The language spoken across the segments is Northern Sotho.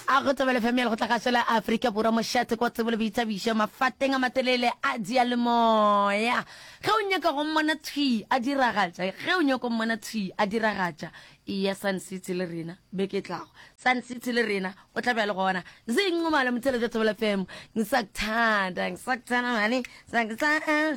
a go tsebele family go tla ga sela Africa Borwa mošate kwa tsebole boithabišo mafateng a matelele a diyalemoya ge o nyaka go mmona tshwi a diragatša ge o nyaka go mmona tshwi a diragatša iya Sun City le rena beke tlago Sun City le rena o tla bjale gona zinqumalo motheletša tsebele fm ngisakuthanda ngisakuthanda mane sakuthanda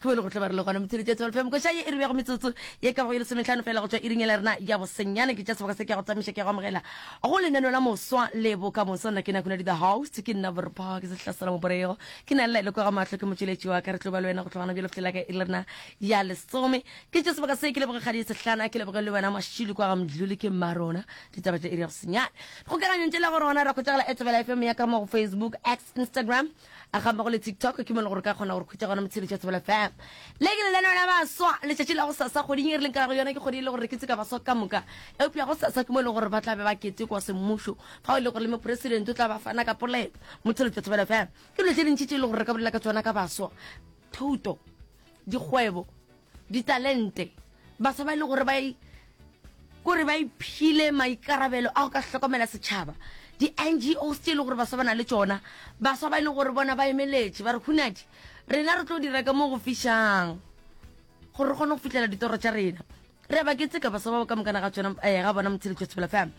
Ge go le go tlo ba re le gona motsheletši a tsebalefe mokoša ye e re beago metsotso ye ka bago ye lesometlhano feela go tšwa iring ya lerena ya bosenyane. Ke tša seboka se ke a go tsamaiša ke a go amogela go lenaneo la moswa le bokamoso. Nna ke Nakunadi the host, ke nna borpha ke sehlasela moborego ke na le laelo kwa ga mahlo ke motšweletši wa ka. Re tlo ba le wena go tloga gona bjale go fihlela ka iri ya lerena ya lesome. Ke tše seboka se ke leboge kgadi ye sehlana ke leboge le wena mašilo kwa ga mdluli ke mmarona. Ditaba tša iri ya bosenyane dikgokaganyong tše la go rona ra khwetšagala at Thobela FM ya ka mo go Facebook, X, Instagram. a ga mmogo le tiktok ke mo le gore ka kgona gore khwetsa gona motshedi tša tsebela fam le ke le leno la baswa letšatši la go sasa kgweding e re leng ka go yona ke kgwedi e le gore ke tseka baswa ka moka eupša go sasa ke mo e leng gore ba tla be ba kete kwa semmušo fao e le gore le mopresidente o tla ba fana ka polelo motshedi tša tsebela fam ke dilo tše dintši tše e le gore re ka bolela ka tsona ka baswa thuto dikgwebo Ditalente. Baswa ba e le gore ba e kore ba iphile maikarabelo a go ka hlokomela setšhaba di-ngos tse e le gore baswa ba na le tsona baswa ba e leng gore bona ba emeletše ba re hunadi rena re tlo dira ka mo go fišang gore re kgone go fitlhela ditoro tša rena re ba ke tseka baswa ba ka mokana ga tsona eh, ga bona motshedi jwa sebela fam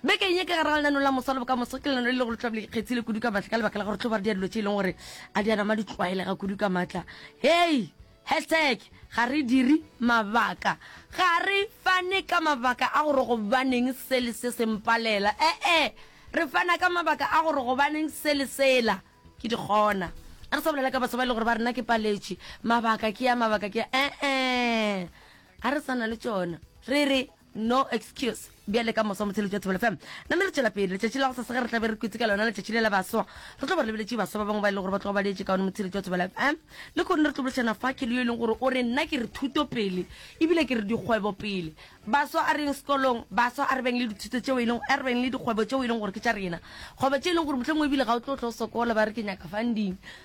beke eng e ka gare ga lenano la mosa le bokamoso ke lenano le le go letlabole ikgetsile kudu ka maatla ka lebaka la gore tlo ba re di a dilo tse e leng gore a di anama di tlwaelega kudu ka maatla hei Hashtag Ga re dire mabaka Ga re fane ka mabaka a gore gobaneng se le se se mpalela, ee, re fana ka mabaka a gore gobaneng se le sela. Ke di kgona. A re sa bolela ka baswa ba e le gore ba re na ke paletše. Mabaka ke a, mabaka ke a, ee, ga re sa na le tšona. Re re. No Excuse. Bjale ka moso motheletši wa Thobela FM, name re tšwela pele. Letšatši la go sasa ge re tla be re kwetše ka lona letšatši le la baswa, re tlo ba re lebeletše baswa ba bangwe ba e lego gore ba tloga ba le etše kaone motheletši wa Thobela FM. Lehono re tlo boledišana fa ke le yo e leng gore o re nna ke re thuto pele ebile ke re dikgwebo pele. Baswa a reng sekolong, baswa a re beng le dithuto tšeo e leng, a re beng le dikgwebo tšeo e leng gore ke tša rena. Kgwebo tše e leng gore mohlomongwe ebile ga o tlo tlo sokola ba re ke nyaka funding,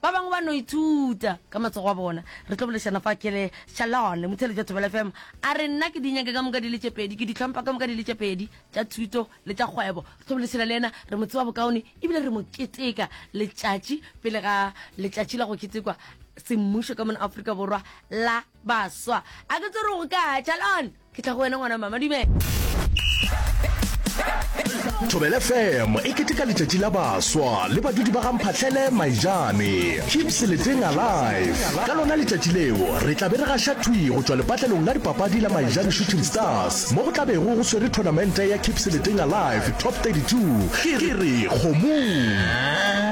Ba bangwe ba no ithuta ka matsogo a bona. Re tlo boledišana fa Kelly Shalon, motheeletši wa Thobela FM, a re, Nna ke di nyake ka moka di le tše pedi, ke di hlompha ka moka di le tše pedi, tša thuto le tša kgwebo. Re tlo boledišana le yena, re mo tseba bokaone e bile re mo keteka letšatši pele ga letšatši la go ketekwa semmušo ka mona Afrika Borwa la baswa. A ke tsebe gore go kae, Shalon? ke tla go wena ngwana mama dumela thobele fm e keteka letšatši la baswa le badudi ba gamphatlhele maijane keep seleteng alive ka lona letšatši leo re tla be re gaša thwi go tšwa lepatlelong la dipapadi la maijane shooting stars mo go tla bego go swere tournamente ya keep seleteng alive top 32 ke re kgomong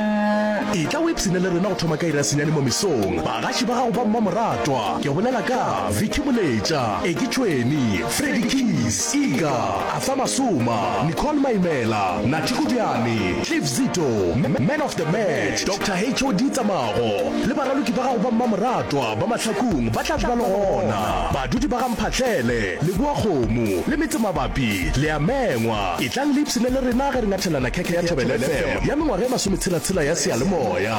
e tla o ipsene le rena go thoma ka irasenyane mo mesong bagaši ba gago ba mmamoratwa ke bolela ka vicky moletša Eki Tšhweni, Freddy Keys, Iga, Arthur Masuma, Nicole Maimela, Nathi Kodiane, Cliff Zito, Man of the Match, Doctor HOD Tsamago le baraloki ba gago ba mmamoratwa ba Mahlakung ba tla ba le gona. Badudi ba ga Mphahlele, Leboa Kgomo le metse mabapi le a mengwa. Etlang le ipshine le rena ge re ngathelana khekhe ya Thobela FM ya mengwaga e masometshela-tshela ya seyalemoya.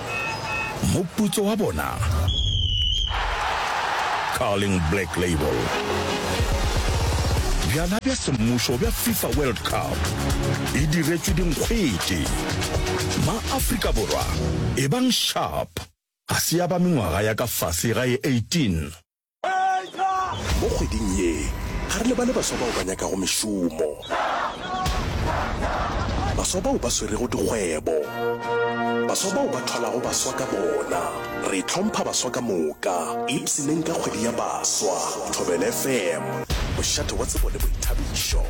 Moputso wa bona, Carling Black Label. Bjala bja semmušo bja FIFA World Cup e diretšwe dinkgwete. Ma-Afrika Borwa, ebang sharp, ga se ya ba mengwaga ya ka fase ga e 18. Mo kgweding ye, ga re lebale baswa bao ba nyakago mešomo, baswa bao ba swerego dikgwebo, baswa bao ba thwalago baswa ka bona. Re hlompha baswa ka moka, ipshineng ka kgwedi ya baswa. Thobela FM, mošate wa tsebo le boithabišo.